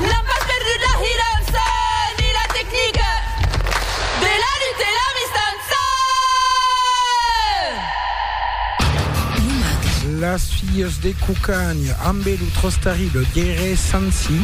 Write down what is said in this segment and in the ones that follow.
N'an pas perdut la hirança ni la tecnica de la lutte e la mistança! Las filles de Cucagna ambe lo tros terrible Guerre Sansi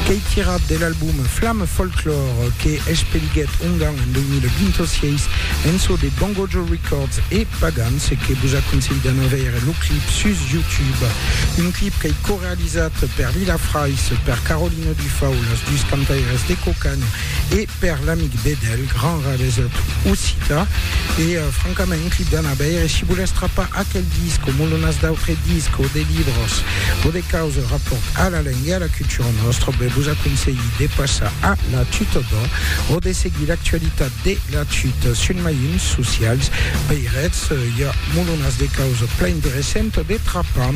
qu'ei tirat de l'album Flamme Folklore que expeliguèt Ongan en 2026 en çò de Bongojo Records e Pagans e que vos aconselhi d'anar veire lo clip sus YouTube. Un clip qu'ei corrècte Realizat per Lila Frais, per Carolina Dufau, las dus cantaires de Cocan e per l'amic Bedel, grand rabesot occita. E francament, un clip d'anar veire. Si volètz trapar aquel disc o molonas d'autres discs o de libros o de causes rapòrt a la lenga e a la cultura nòstra, ben vos aconselhi de passar a la Tutor d'Or o de seguir l'actualitat De la chute sul mailhons socials veirètz, i a molonas de causa plain de recent de trapar.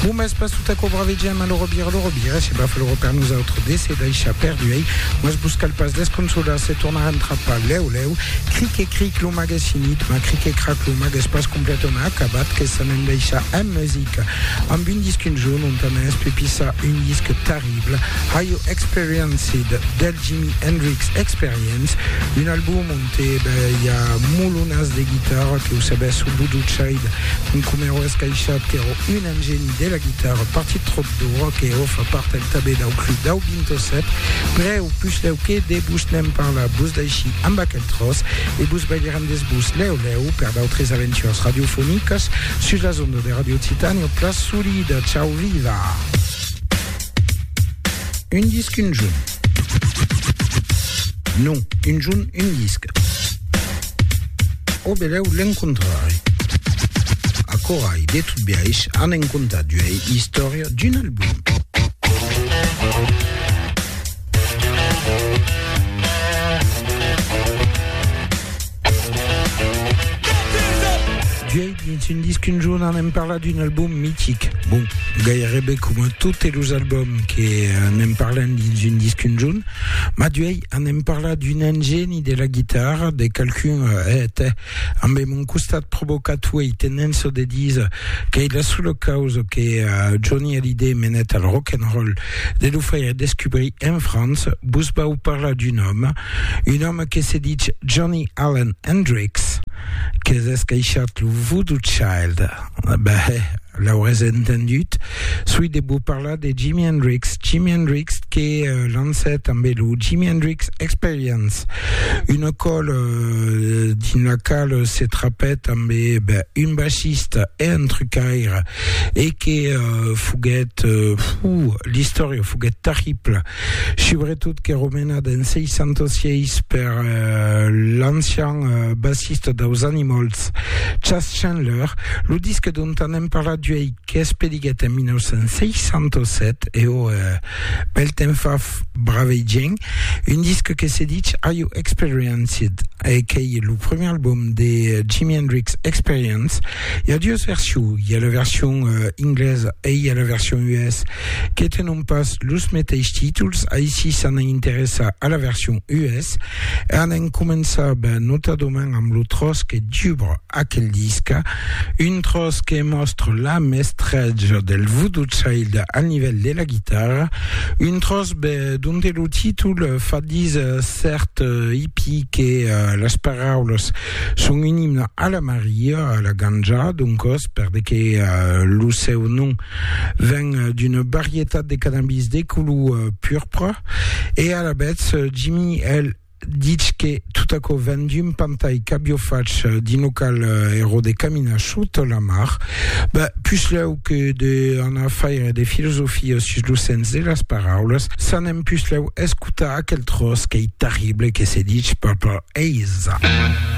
Bon mès pas tota cobra vegem a l'orobira, l'orobira se bafa l'oro per nosautres de se daishar perduei, mas vos cal pas desconsolar se tornarem trapar lèu lèu, cric e cric lo mag es finit, ma cric e crac lo mag es pas completament acabat que s'anem daishar en musica amb un disc un jorn ont anem espepissar un disc tari. Disponible Haiò Experienced del Jimi Hendrix Experience, un album onte i a molonas de guitarra que o sabès o boduchaid un comèro escaishat qu'èro un engeni de la guitarra partit tròp dora que o fa part el tabé dau club dau Bintosèt prèu puslèu que de vos n'èm parlat vos daishí amb aquel tròç e vos balhirem des vos lèu lèu per d'autres aventures radiofonicas sus las ondas de Radio Titània Plas Solida, ciau viva! Un disc, un junt. Non, un junt, un disc. Au belèu l'encontrarè. Acorai, de tot biaish, anem contar d'uei istòria d'un album. Vièit dins un disc un jorn anem parlar d'un album mitic. Bon, gairebe coma totes los albums que anem parlant dins un disc un jorn, ma duèi anem parlar d'un ingèni de la guitarra, de qualqu'un eh, tè, ambe mon costat provocator e tenenço de dire qu'ei la sola causa que uh, Johnny Hallyday menèt al rock and roll, de lo faire descubrir en França, vos vau parlar d'un òme Un òme que se ditz Johnny Allen Hendrix que descaishat lo Voodoo Child. Bah, l'aurès entendut. Soi de vos parlar de Jimi Hendrix. Jimi Hendrix que euh, lancèt amb lo Jimi Hendrix Experience. Una còl euh, dins la qual se trapèt amb bah, un bassista e un trucaire e que euh, foguèt, euh, fou, l'istòria foguèt terribla. subretot qu'èra menat en 606 per l'ancian bassista daus Animals, Chas Chandler. Lo disc dont anem parlat uèi, qu'es pediguèt en 1967, e ò, bèl temps fa, bravei gent, un disc que se ditz Are You Experienced? e qu'ei lo premier album de Jimi Hendrix Experience, Hi a dues versions, hi a la version euh, inglesa e hi a la version US, que tenon pas los meteis títols, aicí s'an a interessar a la version US, e an en començar ben notadament amb lo tròç que dubra aquel disca, un tròç que mòstra la mestratge del Voodoo Child al nivèl de la guitarra, un tròç ben donte lo títol fa díser cèrt hippie que euh, las paraulas Son un imne a la Maria, a la Ganja, doncòs, per de que lo seu nom ven d'una varietat de cannabis de color purpre, e alavetz Jimmy el dich que tot aquò ven d'un pantai qu'avió fach d'un local ero de caminar sot la mar, ben, puslèu que de anar faire de filosofia sus lo sens de las paraulas, s'anem puslèu escotar aquel tròç qu'ei terrible que se dich Purple Haze.